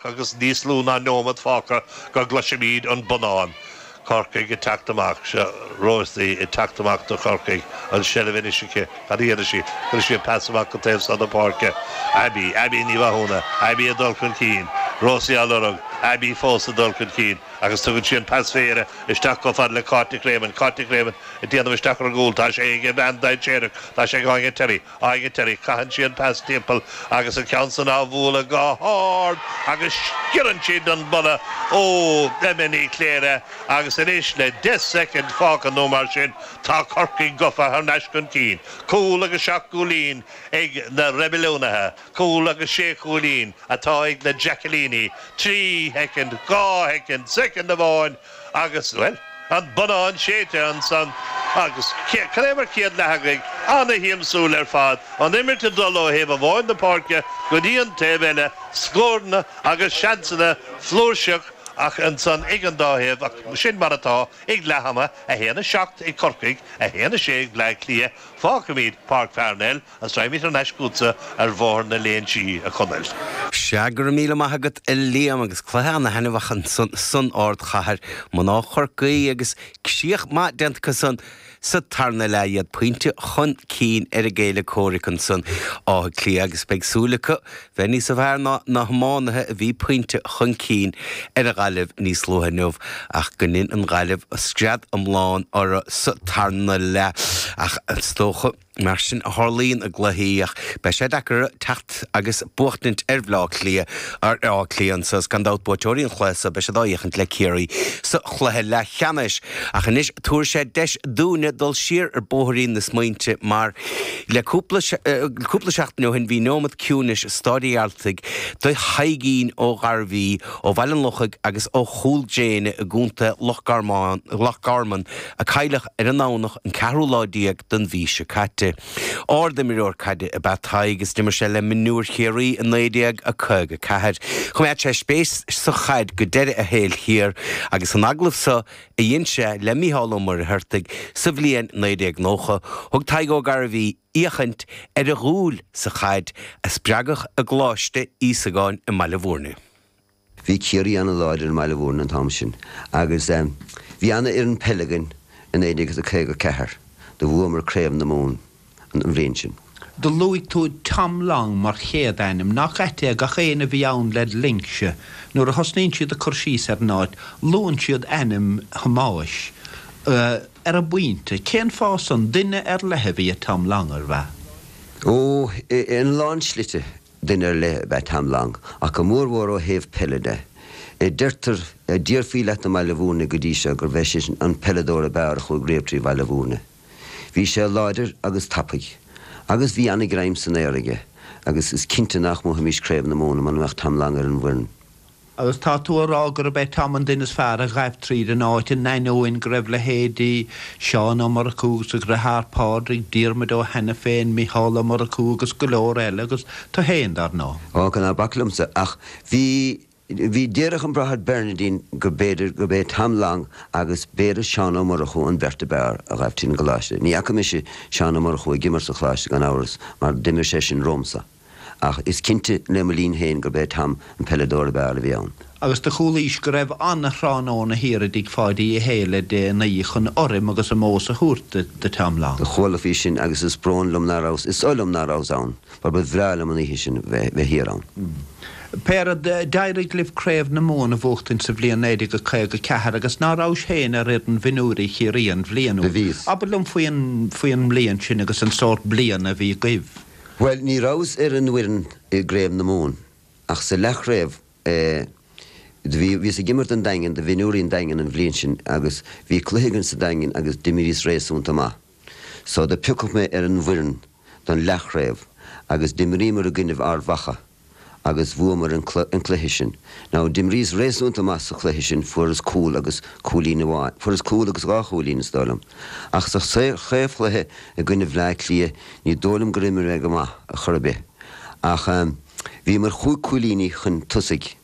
Agus níos lú ná neomat fágtha go gcloisimíd an bonnán Corcaigh ag teacht amach, seo Rosie ag teacht amach do Chorcaigh, an seilbh anois aici. Cad a dhéanfaidh sí? Cuirfidh sí an pas amach go taobh so na páirce. Abbie, Abbie Ní Mhathúna, Abbie ag dul chun cinn. Rosie á lorg, Abbie fós ag dul chun cinn. Agus tugann sí an pas méire isteach chomh fada le Cáit Nic Réamoinn. Cáit Nic Réamoinn ag déanamh isteach ar an gcúl. Tá sé aige bean dainséarach. Tá sé aige Áine Terry. Áine Terry. Caitheann sí an pas timpeall agus an ceann san á bhualadh go hard agus sciorrann sí den mballa ó Emma Ní Chléire agus anois le deich soicind fágtha nó mar sin tá Corcaigh gofa thar n-ais chun cinn. Cúl agus seacht gcúilín ag na Reibiliúnaithe. Cúl agus sé chúilín atá ag na Jackilíní. Trí shoicind. Dhá shoicind. Soicind amháin. Agus, bhuel, an bonnán séidte ansan agus cad é mar chéad leath agaibh, ana-shiamsúil ar fad, an imirt ag dul ó thaobh amháin na páirce go dtí an taobh eile, scóranna agus seansanna flúirseach ach ansan ag an dá thaobh ach sin mar atá ag leath ama, 1, 7 ag Corcaigh, 1, 6 ag Bleá Cliath, fágfaimid Páirc Pharnell Is raghaidh mé thar n-ais chughatsa ar Bhóthar na Léinsí, a Chonaill. Sea, go raibh míle maith agat, a Liam, agus cluiche ana-thaitneamhach ansan san ardchathair, mná Chorcaí agus sruth maith déanta acu san sa tarna leath, iad pointe chun cinn ar a gcéilí comhraic ansan, Áth Cliath, agus beidh súil acu bheith níos fearr ná na hiománaithe a bhí pointe chun cinn ar an Ghaillimh níos luaithe inniu ach gur dhein an Ghaillimh scrios iomlán orthu sa tarna leath. Ach is dócha. Mar sin ná tarlaíonn i gcluichí ach beidh sé deacair teacht agus buachtaint ar Bhleá Cliath, ar Áth Cliath anso. Is gan dabht buaiteoirí an chluiche so beidh siad á fhiachaint le Ciarraí sa chluiche leathcheannais. Ach anois tabharfaidh sé deis dúinne dul siar ar bhóithrín na smaointe mar le cúpla cúpla seachtain ó shin bhí neomat ciúinis i Staid de Staic do Thaidhgín Ó Gairbhí ó Bhaile an Lochaigh agus ó Chúl Gréine i gContae Loch Garman a cailleadh ar an nDomhnach an ceathrú lá déag den mhí seo caite. Ard-imreoir caide ab ea Tadhg agus d'imir sé le mionúir Chiarraí i 1954. Choimeád sé spéis sa chaid go deireadh a shaoil thiar agus san agallamh seo a dhein sé le Mícheál Ó Muircheartaigh sa bhliain 1990, thug Tadhg Ó Gairbhí féachaint ar a dhúil sa chaid a spreagadh i gColáiste Íosagáin i mBaile Mhúirne. Bhí Ciarraí an-láidir i mBaile Mhúirne an t-am sin agus bhí an-fhoireann peile againn i 1954 do bhuamar Craobh na Mumhan an bhliain sin. Do luaigh tú Tom Long mar chéad ainm, nach ait é, gach aon a bhí ann led linnse, nuair a thosnaíonn siad ag cur síos ar an áit, luann siad ainm Thomáis. ar an bpointe. Cén fáth san? Duine ar leith a bhí i Tom Long, ab ea? Ó, ina lán slite. Duine ar leith ab ea Tom Long, ach go mórmhór ó thaobh peile de. Deirtear, déarfaí leat i mBaile Bhuirne go dtí seo, gurbh é sin an peileadóir ab fhearr a chuaigh riamh trí Bhaile Bhuirne. Bhí sé láidir agus tapaidh. Agus bhí an-ghreim san aer aige. Agus is cinnte nach mbuafaimís Craobh na Mumhan muna mbeadh Tom Long ar an bhfoireann. Agus tá tú ag rá gurb é Tom an duine is fearr a ghaibh tríd an áit, in ainneoin go raibh leithéidí Seán Ó Murchú agus a dheartháir Pádraig, Diarmuid Ó hAiniféin, Micheál Ó Murchú agus go leor eile, agus tú fhéin, dar ndóigh. Ochón, ná bac liomsa ach bhí, bhí, déarfadh an Bráthair Bernardin go mb'fhéidir gurb é Tom Long agus b'fhéidir Seán Ó Murchú an bheirt ab fhearr a ghaibh tríd an gColáiste. Ní fhaca mise Seán Ó Murchú ag imirt sa Choláiste, gan amhras, mar d'imir seisean romhamsa. Ach is cinnte le mo linn féin gurb é Tom an peileadóir ab fhearr a bhí ann. Agus do chualaís go raibh an-thráthnóna thiar i dtigh Pháidí Uí Shé le déanaí chun urraim agus omós a thabhairt do Tom Long. Do chuala faoi sin agus is brón liom ná rabhas, is oth liom ná rabhas ann mar ba bhreá liom an oíche sin bheith thiar ann. Pé rud, d'éirigh libh Craobh na Mumhan a bhuachtaint sa bhliain naoi déag caoga a ceathair agus ná rabhais féin ar fhoireann mhionúirí Chiarraí an bhliain úd? Do bhíos. Abair liom faoin, faoin mbliain sin agus an sórt bliana a bhí agaibh. Bhuel, ní rabhas ar an bhfoireann i gCraobh na Mumhan ach sa leathchraobh eh do bhí, bhíos ag imirt don Daingean, do mhionúirí an Daingin an bhliain sin agus bhí cluiche againn sa Daingean agus d'imríos réasúnta maith. So do piocadh mé ar an bhfoireann don leathchraobh agus d'imríomar i gcoinnibh Ard Mhacha. agus bhuamar an cluiche sin. Now d'imríos réasúnta maith sa chluiche sin, fuaireas cúl agus cúilín amháin, fuaireas cúl agus dhá chúilín is dóigh liom. Ach sa chraobhchluiche i gcoinne Bhleá Cliath ní dóigh liom gur imir mé go maith ar chor ar bith. Ach, eh, bhíomar chúig cúilíní chun tosaigh.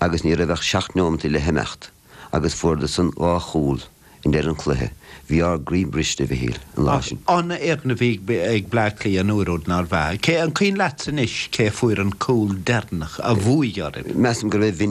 agus ní raibh ach seacht neomaintí le himeacht agus fuaireadsan dhá chúl i ndeireadh an chluiche. Bhí ár gcroí briste, a Mhichíl, an lá sin. Ach an-fhoireann a bhí ag Bleá Cliath an uair úd, nárbh ea? An cuimhin leatsa anois cé a fuair an cúl deireanach a bhuaigh oraibh? Measaim gurbh é Vinny.